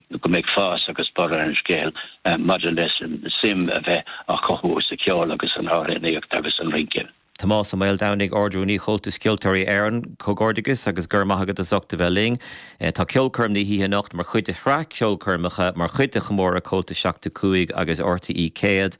go mbeidh fás agus borradh ar an scéal maidir le suim a bheith á chothú sa cheol agus san amhránaíocht agus sa rince. Tomás Ó Maoldomhnaigh, Ardrúnaí Comhaltas Ceoltóirí Éireann, comhghairdeachas agus go raibh maith agat as ucht a bheith linn. Tá ceolchoirm na hoíche anocht mar chuid de shraith ceolchoirmeacha mar chuid de chomóradh Comhaltas 75 agus RTÉ 100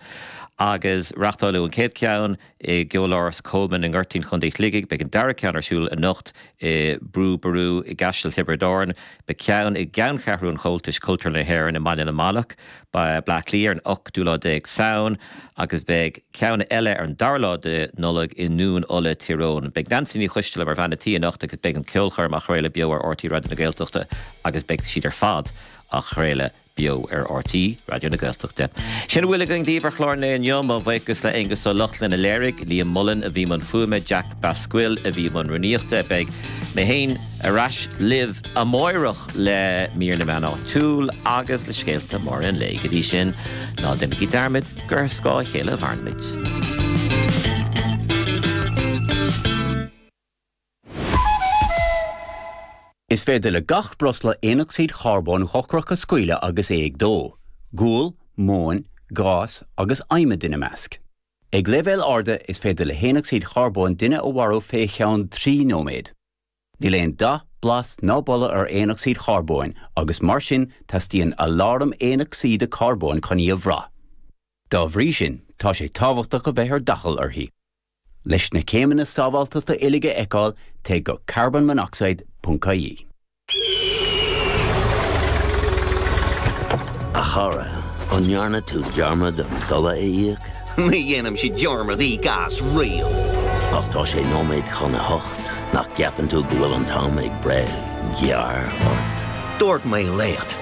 agus reáchtáladh an chéad cheann, i gCeoláras Coleman i nGoirtín Chontae Shligigh. Beidh an dara ceann ar siúl anocht i Brú Ború i gCaiseal Thiobraid Árann. Beidh ceann i gceanncheathrú an Chomhaltais Cultúrlann na hÉireann i mBaile na Manach, Baile Átha Cliath ar an ochtú lá déag Samhain agus beidh ceann eile ar an dara lá de Nollaig i nDún Uladh, Tír Eoghain. Beidh Neansaí Ní Choisdealbha mar bhean a' tí anocht agus beidh an cheolchoirm á chraoladh beo ar RTÉ Raidió na Gaeltachta agus beidh siad ar fad á chraoladh beo ar RTÉ Raidió na Gaeltachta. Sin a bhfuil againn daoibh ar chlár an lae inniu. Mo bhuíochas le Aonghus Ó Lochlainn a léirigh, Liam Mullen a bhí i mbun fuaime, Jack Basquill a bhí i mbun rúnaíochta. Beidh mé féin ar ais libh amáireach le Mír na Meán Áitiúil agus le scéalta móra an lae. Go dtí sin, ná déanaigí dearmad gur ar scáth a chéile a mhairimid. Is féidir le gach breosla aonocsaíd charbóin dhochrach a scaoileadh agus é ag dó, gual, móin, gás agus adhmad ina measc. Ag leibhéil arda is féidir le haonocsaíd charbóin duine a mharú fé cheann trí nóiméad. Níl aon dath, blas ná boladh ar aonocsaíd charbóin agus mar sin teastaíonn aláram aonocsaíde carbóin chun í a bhrath. Dá bhrí sin tá sé tábhachtach a bheith ar d'fhaichill uirthi. Leis na céimeanna sábháltachta uilig a fheiceáil, téigh go carbonmonoxide ponc ie. A chara, an ndearna tú dearmad an dola a íoc? Ní dhéanaimse dearmad íoc as riamh. Ach tá sé nóiméad chun a hocht, nach gceapann tú go bhfuil an t-am ag breith gearr ort? Dúirt mé leat.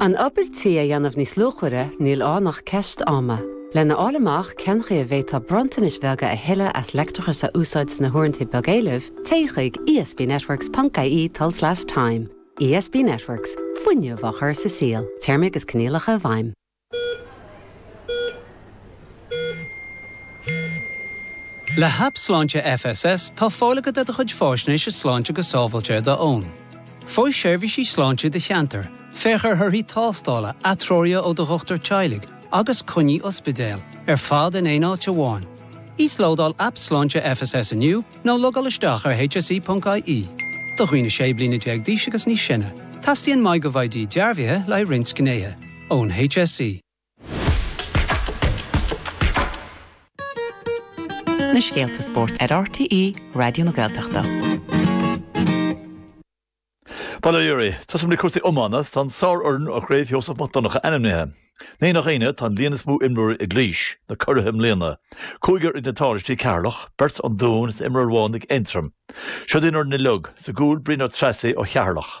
An obair tí a dhéanamh níos luachmhaire, níl ann ach ceist ama. Lena fháil amach cen chaoi a bhféadfá bronntanais bheaga a thuilleadh as leictreachas a úsáid sna huaireanta beag éilimh, téigh chuig esbnetworks.ie tulslais time. ESB Networks, fuinneamh á chur sa saol. Téarmaí agus coinníollacha i bhfeidhm. Le hAip Sláinte FSS tá fáil agat ar do chuid faisnéise sláinte go sábháilte ar d'fhón. Faigh seirbhísí sláinte i do cheantar, féach ar thorthaí tástála, atreoruithe ó do dhochtúir teaghlaigh agus coinní ospidéil, ar fad in aon áit amháin. Íoslódáil Aip Sláinte FSS inniu nó logáil isteach ar hse.ie. Do dhaoine 16 bliana d'aois agus níos sine, teastaíonn MyGovID dearbhaithe le haghaidh roinnt gnéithe. ón HSE. na scéalta spóirt ar RTÉ Raidió na Gaeltachta. Bail oraibh, tosaím le cúrsaí iomána, tá an sárfhoireann ó Chraobh Sheosamh Mac Donncha ainmnithe. Ní nach ionadh tá an líon is mó imreoirí ag Laois, na curaithe i mbliana. Cúigear ag na tánaistí, Ceatharlach, beirt ón Dún is imreoir amháin ag Aontroim. Siod í an fhoireann uilig, sa gcúl Brian Ó Treasaigh ó Cheatharlach.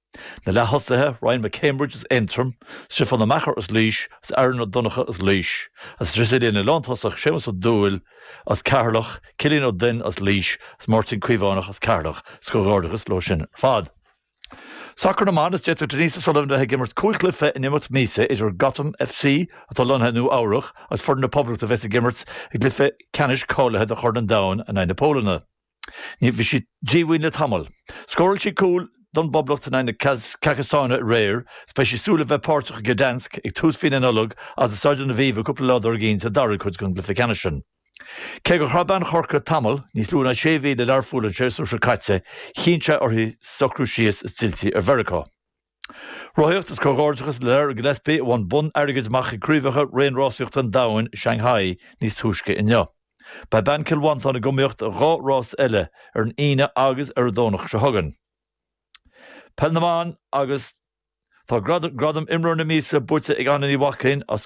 Na leath-thosaithe, Ryan McCambridge as Aontroim, Stiofán Ó Meachair as Laois, is Aaron Ó Donncha as Laois, is sa líne lántosach, Séamus Ó Dúill as Ceatharlach, Cillian Ó Duinn as Laois, is Máirtín Caomhánach as Ceatharlach, 's comhghairdeachas leo sin ar fad. Sacar na mBan, Is d'fhéadfadh Denise O'Sullivan bheith ag imirt cúig chluiche in imeacht míosa idir Gotham FC atá lonnaithe i Nua Eabhrach agus Foireann na Poblachta a bheas ag imirt i gcluiche ceannais cáilithe do Chorn an Domhain in aghaidh na Pólainne. Bhí sí díomhaoin le tamall. Scóráil sí cúl don bPoblacht in aghaidh na Casacstáine aréir is beidh sí ag súil a bheith páirteach i Gdansk ag tús mhí na Nollag agus i Staid an Aviva cúpla lá dár gcionn sa dara cuid den gcluiche ceannais sin. Cé gur chaith bean Chorcaí tamall níos lú ná sé mhí le Learpholl an séasúr seo caite, chinn sé uirthi socrú síos is d'fhill sí ar Mheiriceá. Rothaíocht is Comhghairdeachas le Lara Gillespie a bhain bonn airgid amach ag Craobhacha Raon Rásaíochta an Domhain i Shanghai níos túisce inniu. Beidh bean Chill Mhantáin ag iomaíocht i dhá rás eile, ar an Aoine agus ar an Domhnach seo chugainn. Peil na mBan agus Tá gradam Imreoir na Míosa buaite ag Adhna Ní Mhaicín as.